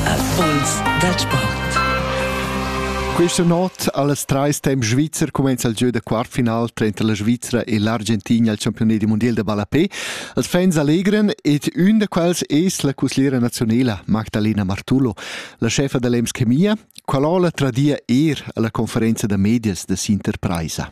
Erfolgs dal sport. Questa notte alles trais temp Schweizer comincia il gieu da quartfinal tranter la Svizzera e l'Argentina al campione del mondial de ballapé. Els fans allegran ed un da quels es la cusliera nazionala Magdalena Martullo, la chefa dell'Ems Chemia, qual'ola tradia er alla conferenza da medias de Sinterpreisa.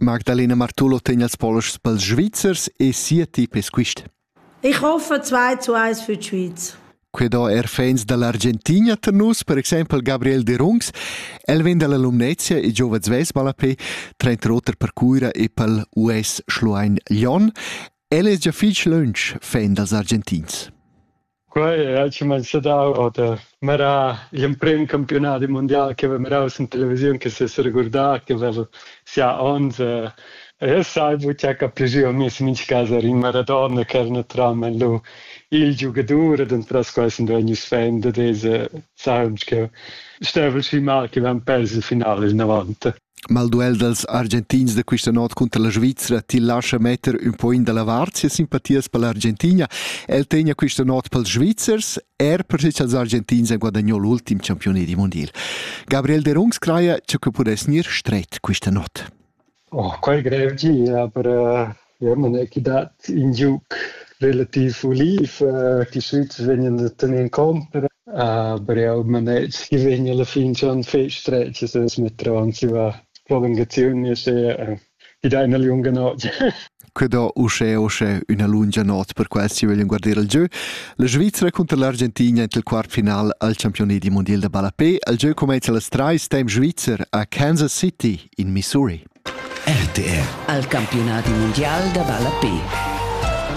Magdalena Martullo tegn els poloschs pels Svizzers e sia tip es quist. Ich hoffe 2 zu 1 für die Schweiz. Que do er fans da l'Argentina tar nus, per exempel Gabriel de Rungs. El vegn da l'Alumnezia e giova Zves Balapé, trenta roter per Cuira e pel US Schluein Lyon. El es già fich lönch fan dals Argentins. Quei ha cumanzà dau oter merar gl'emprem campiunadi mundial che haveva merau sin televisiun che seregurdà che haveva sia onns e e sai buca capi jeu mi sin mintga cas era in Maradona che era naturalmein lu il giugadur ed entras quei sun vegnius fan dad esa saung cheu stevel schi mal che van pers il final il novanta. Malduel dals Argentins da questa not cunter la Svizra ti lascha metter un po in da la vart sia simpatias per l'Argentina. El tegna questa not pels Svizzers, er perché cha'ls Argentins han guadagno l'ultim champione di mondial. Gabriel de Rungs craja cha que pudess gnir stret questa not. Oh, quel grev gi, aber äh, Ja, man è chi dat ün giuc relativ uliv chi süts vegnan a tener in compra, aber eau maneg chi vegn alla fin schon fich stretg e sez metter avanzi la prolungaziun e sè chi daina lunga not. Que do uschè uschè üna lungia not per quels chi vöglian guardir il giö. La Svizra cunter l'Argentina int il quart final al campiunedi mundial da ballapè. Il giö cumainza las trais temp svizzer a Kansas City in Missouri. RTR. Al campiunadi mundial da ballape.